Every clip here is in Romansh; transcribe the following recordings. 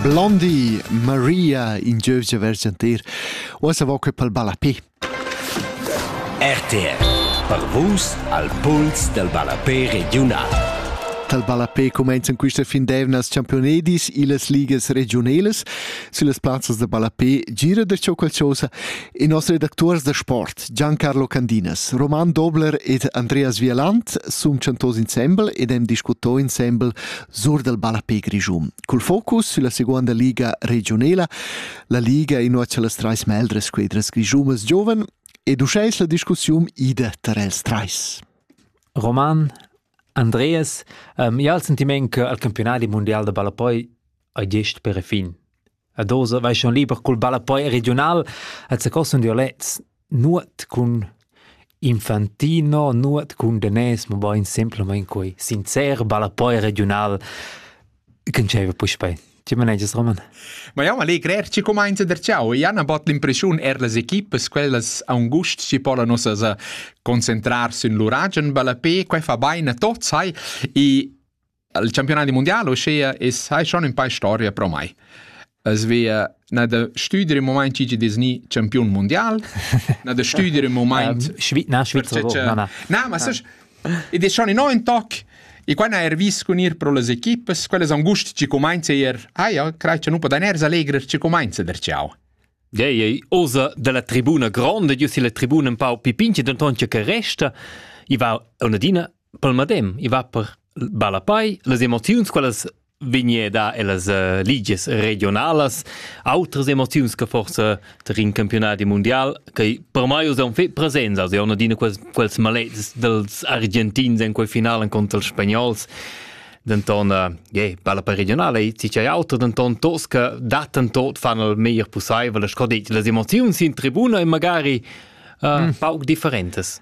Blondie, Maria, in giövgia versantir. Uossa vo que pel ballapé. RTR per vus al puls del ballapé regiunal. Tal ballapé comenzan quista fin d'eivnas championedis illas ligas regiunelas süllas plazzas da ballapé Gira der Ciò Qualchosa e nos redactors da sport Giancarlo Candinas, Roman Dobler ed Andreas Vieland sun chantos insembel ed hem discutto insembel sur dal ballapé grischun. Cul focus sülla seguonda liga regiunela, la liga innocia las trais meldres squedras grischunas gioven ed uschais la discussiun ida tar els trais. Roman, Andreas, um, ja il sentiment che al campionati mondial da ballapoi hai gest per fin. Ed oz vaixan liber cul ballapoi regiunal et secosun dialects nuot cun infantino, nuot cun danès, mabain simplamaing quai sincer ballapoi regiunal ch'ün dschaiva puspei. Tge manegias, Roman? Ma jau m'allegrer chi cumainza der ciao. I han abot l'impression er las equipas quellas angust chi pola nossas a concentrar sün lur agen ballapé, quai fa bain a tots, hai, e al campionat mondial, uschia es hai schon ün pa storia pro mai. Es via na da stüdere im Moment gigi Disney Champion mondial, na da stüdere im Moment Schweiz, na Schweiz, na na. Na, ma sech ed è schon in neuen Tag e quando er vis con ir pro las equipes, quelles angust ci comenza er, ah ja, crei che nu podan er allegrer ci comenza der ciao. Ei, ei, osa dalla tribuna grande, io si la tribuna un pau pipinci, denton che resta, i va un'adina pel madem i va per ballapei las emoziuns quellas vegneda ellas uh, ligies regionalas outras emoziuns che forse ter in campionati mondial che per mai usan fe presenza se una dina quels quels malets dels argentins in quel finalen contro els spagnols denton uh, yeah, balla per regionale e ti c'è auto denton tos che daten tot fanno il meglio possibile sco detto le emozioni in tribuna e magari uh, mm. pauc differentes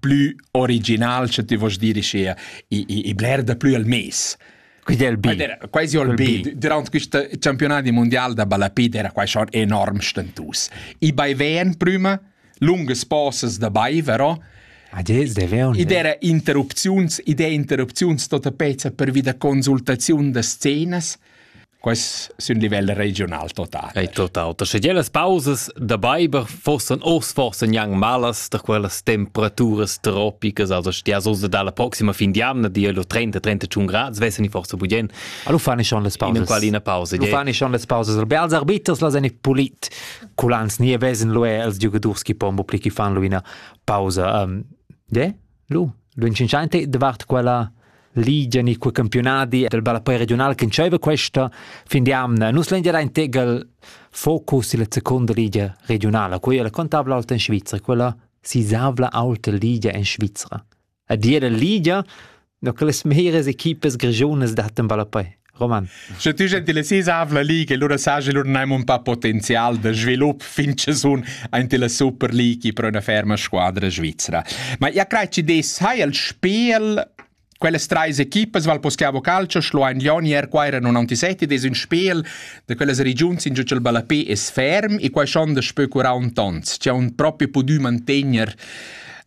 plü original, sche ti vos dire sia, i, i, i bler da plü al mes. Quindi è il B. Era quasi il B. Durante questo campionato mondiale da balapid era quasi schon enorm stentus. I baiven prima, lungas pauses da bai, vero? Ah, des deveon. Ed era interrupziuns, idee interrupziuns tota pezza per vida consultaziun da scenas, Quais sun livel regional total? Ei total. Da sche las pausas da beiber forsan ors forsan jan malas da quellas temperaturas tropicas, also stia so da la proxima fin d'jamna di lo 30-31 grad, vessen i forse bugien. Allo fani schon las pausas. In qual ina pausa. Lo fani schon las pausas. Be als arbiters las en pulit culans nie vesen lo els giugadurs chi pombo pli chi fan lo ina pausa. Um, de? Lu, lunschenschanti davart quella ligia ni quei campiunadi del ballapei regiunal che entscheiva questa fin di amna nus lein era in tegel focus illa seconda ligia regiunala quella la contabla alta in Svizra quella sisavla alta ligia in Svizra a dir la ligia no che las meras equipas grigiunas dattan ballapei Roman. Sche tu gentilessis avla league e lura saja lura neim un pa potenzial da svilup fin che sun aint la Super League pro una ferma squadra svizzera. Ma ja crei ci des hai el spel Quelles treis equipas val poschiavo calcio schloain Lioni er qua era 97 des un spel da quellas regions in giu il ballapé es ferm e quai schon da spö 40 ons. C'è un proprio pudü mantegner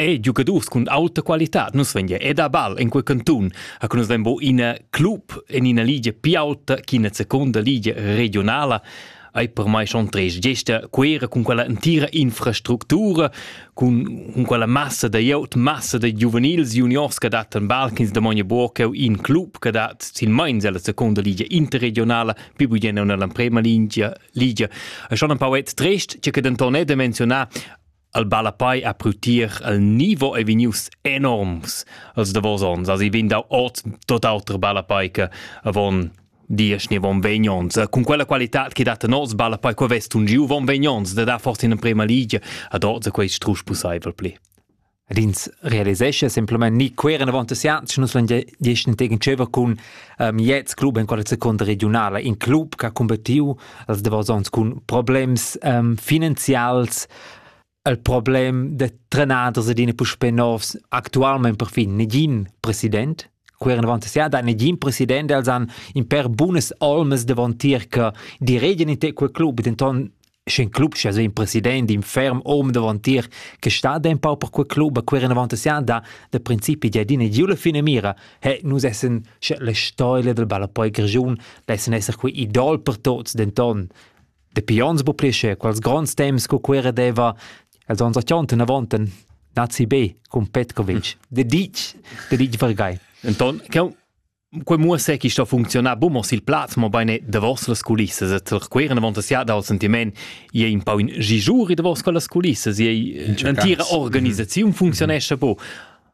E giugadurs cun auta qualitad. Nus vegn ed a ball en quei cantun, ha nus vegn bo ina club en ina ligia più auta ch'ina seconda ligia regionala ei per mai schon tres gesta quera cun quella entira infrastructura, cun, cun quella massa da iout, massa da giuvenils juniors che dat en ball ch'ins domogna buca cheu in club che dat silmeins ella seconda ligia interregionala, più bugen nella prima ligia, ligia. E schon un pauet trist, che denton è de menzionar al ballapei a prutier al nivo ei vegnius enorms als davos ons also vegn dau ot tot auter ballapei che avon dies ni von vegnons cun quella qualità che dat nos ballapei co vest un giu von vegnons da da forse in emprema ligia ad ot quei strusch pusseivel pli Rins realisesce semplament ni queren avant asiats nus lan gieschen tegen tscheva cun um, jets club en quella seconda regionala in club che ha combattiu als davos ons cun problems um, finanzials il problem de trenaders ed in puspè novs actualment perfin negin president queren avanti sia da negin president els han in per bunas olmas davantier che die reden in te quel club denton sch'in club sche so in president in ferm om davantier che sta da un pau per quel club queren avanti sia da de principi ja dine giula fine mira He, nus essan sche la stoila dal ballapoi grischun lessan esser quei idol per tots, denton dapi onns bu plische quels gronds temps co quera deva els ons atjonten avanten nazi B cum Petkovic. De ditg, de ditg vargai. Enton, quei muosse chi sto funzionar bu mo sil plaz, mo beine da vossas culissas et queren avant sia dal sentiment je in po in gijuri da vossas culissas, je l'entira organisaziun mhm. funzionescha bu.